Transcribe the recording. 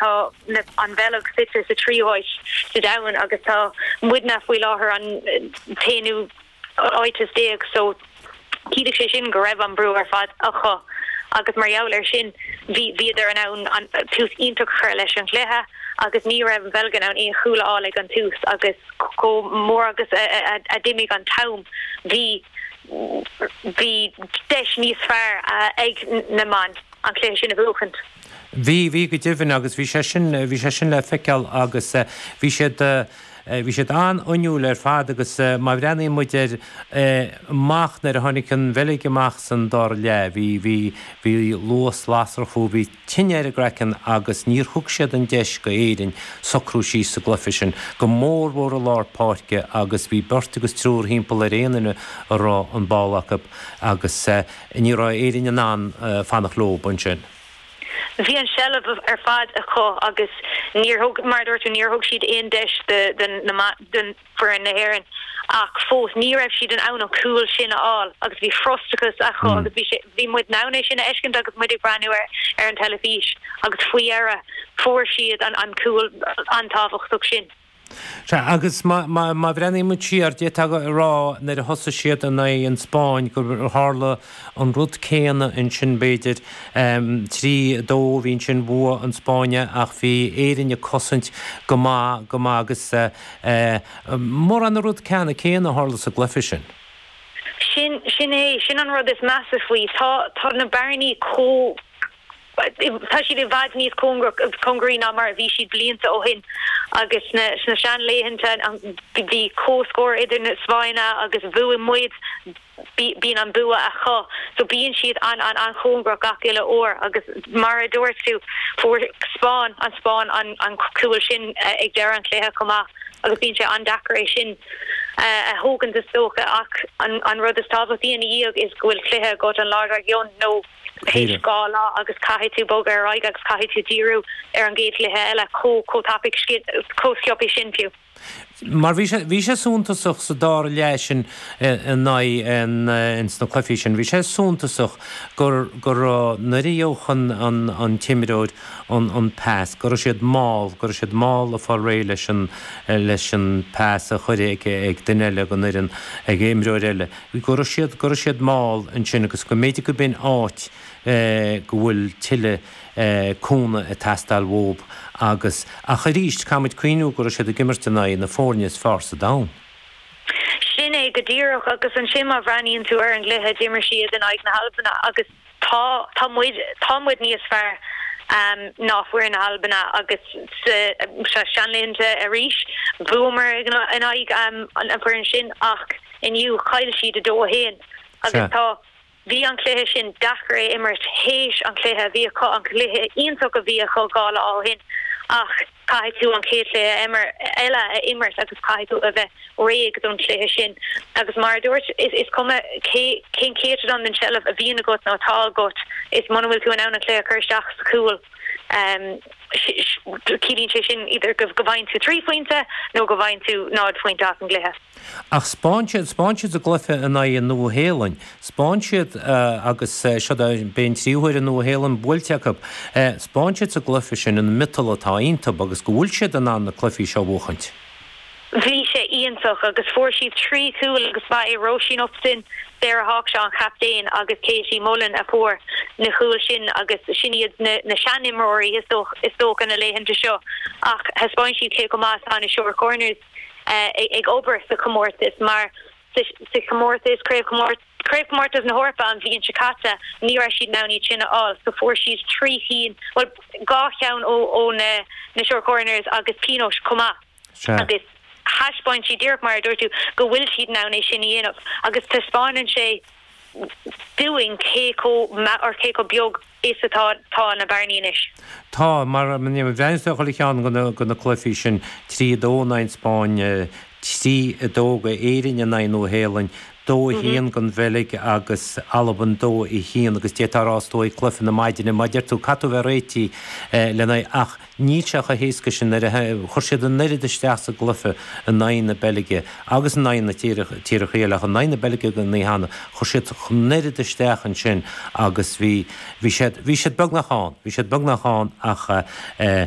Tá an Bheilg suite sa tríú háit sa domhan agus tá muidne faoi láthair an t-aonú háit is déag so chiallaigh sé sin go raibh an brú ar fad acu agus mar gheall air sin bhíodar in ann tús iontach a chur leis an gcluiche agus ní raibh an Bheilg in ann aon chúl a fháil ag an tús agus chomh mór agus a d'imigh an t-am bhí bhí deis níos fearr ag na mná an cluiche sin a bhuachaint. Bhí, bhí go deimhin agus bhí sé sin, bhí sé sin le feiceáil agus bhí siad, bhí siad an-fhuinniúil ar fad agus má bhreathnaíonn muid ar amach nuair a tháinig an Bheilg amach san dara leath, bhí, bhí, bhí luas lasrach fúthu, bhí tine ar a gcraiceann agus níor thug siad an deis go Éirinn socrú síos sa gcluife sin, go mórmhór i lár páirce agus bhí beirt agus triúr thimpeall ar aon duine a raibh an ball acu agus. Ní raibh Éirinn in ann fanacht leo ansin. Bhí an tseilbh ar fad acu agus níor thug, mar a dúirt tú, níor thug siad aon deis d'fhoireann na hÉireann. Ach fós, ní raibh siad in ann an cúl sin a fháil agus bhí frustrachas acu agus bhí sé, bhí muid in ann é sin a fheiscint agus muid ag breathnú ar an teilifís agus faoi dheireadh fuair siad an cúl an-tábhachtach sin. Sea, agus má bhreathnaímid siar, d'fhéadfá a rá, nuair a thosaigh siad in aghaidh an Spáinn, gur tharla an rud céanna ansin, b'fhéidir. Trí, dó, bhí ansin, bhuaigh an Spáinn é, ach bhí Éirinn ag cosaint go maith, go maith, agus mórán na rud ceannann céanna a tharla sa gcluiche sin. Sin, sin é, sin an rud is measa faoi, tá, tá na bearnaí chomh. Tá siad i bhfad níos cóngaraí ná mar a bhí siad blianta ó shin agus sna seanlaethanta bhí comhscór idir an Spáinn agus bhuaigh muid, bíonn an bua acu so bíonn siad an-chóngarach gach uile uair agus mar a dúirt tú, fuair Spáinn, an Spáinn an cúl sin ag deireadh an chluiche chomh maith agus bíonn sé an-deacair é sin a thógaint is dócha ach an rud is tábhachtaí ina dhiaidh is go bhfuil cluiche agat, an lá dár gcionn nó. théis dhá lá agus caithfidh tú bogadh ar aghaidh agus caithfidh tú díriú ar an gcéad chluiche eile chomh tapaidh, chomh sciobthaí sin fiú. Mar bhí sé, bhí sé suntasach sa dara leath sin in aghaidh an, ins na cluifí sin, bhí sé suntasach gur, go raibh, nuair a gheobhadh an, an, an t-imreoir an, an pas, go raibh siad mall, go raibh siad mall ag fáil réidh leis an, leis an pas a chuir ag, ag duine eile den fhoireann, ag imreoir eile. go raibh siad, go raibh siad mall ansin agus go mb'fhéidir go b'in áit go bhfuil tuilleadh cúnamh ag teastáil uathu agus, ach arís, caithfidh muid cuimhniú go raibh siad ag imirt in aghaidh na foirne is fearr sa domhan. Sin é go díreach agus ansin má bhreathnaíonn tú ar an gcluiche, d'imir siad in aghaidh na hAlbana agus Tá, tá muid, tá muid níos fearr ná foireann Albain agus sna seanlaethanta arís, bhuamar in aghaidh an foireann sin ach inniu chaill siad 2-1 agus tá, bhí an cluiche sin deacair a imirt théis an chluiche a bhí acu, an cluiche iontach a bhí acu dhá lá ó shin ach. Caithfidh tú an chéad chluiche eile a imirt agus caithfidh tú a bheith réidh don chluiche sin agus mar a dúirt tú, is cuma cén céatadán den tseilbh a bhíonn agat nó atá agat, is muna bhfuil tú in ann an cluiche a chur isteach sa chúl, ciallaíonn sé sin idir go bhfaigheann tú trí phointe nó go bhfaigheann tú náid phointe as an gcluiche. Ach spáin siad, spáin siad sa gcloife in aghaidh an Nua-Shéalainn, spáin siad, agus seo an tríú uair an Nua-Shéalainn buailte acu, spáin siad sa gcloife sin an miotal atá iontub agus go bhfuil siad in ann na cluifí seo a bhuachaint. Bhí sé iontach agus fuair siad trí chúl agus ba é Róisín Upton, Sarah Hawkshaw an chaptaen agus Katie Mullan a fuair na cúil sin agus sin iad na seanimreoirí is dócha na laethanta seo ach thaispeáin siad cé chomh maith is atá na Short Corners. ag obair sa chomórtas mar sa chomórtas, Craobhchomórtas na hEorpa an bhliain seo caite, ní raibh siad in ann iad sin a fháil so fuair siad trí chinn, bhuel dhá cheann ó na Short Corners agus pionós chomh maith agus thaispeáin siad, díreach mar a dúirt tú, go bhfuil siad in ann é sin a dhéanamh agus taispeánann sé. dúinn cé chomh beag is atá na bearnaí anois. Tá, mar a bhreathnaíonns tú ag chuile cheann de na cluifí sin, 3 2 don Spáinn, 3 2 go Éirinn in aghaidh Nua Shéalainn, 2 1 don Bheilg agus Albain, 2 1 agus d'fhéadfá a rá i dtaobh cluife na maidine mar a deir tú caithfidh tú bheith réitigh lena aghaidh ach Níl sé chomh héasca sin, chuir siad an oiread isteach sa gcluiche in aghaidh na Beilge agus in aghaidh na tíortha eile, ach in aghaidh na Beilge go háithrid, chuir siad an oiread isteach ansin agus bhí, bhí siad, bhí siad beagnach ann, bhí siad beagnach ann ach eh,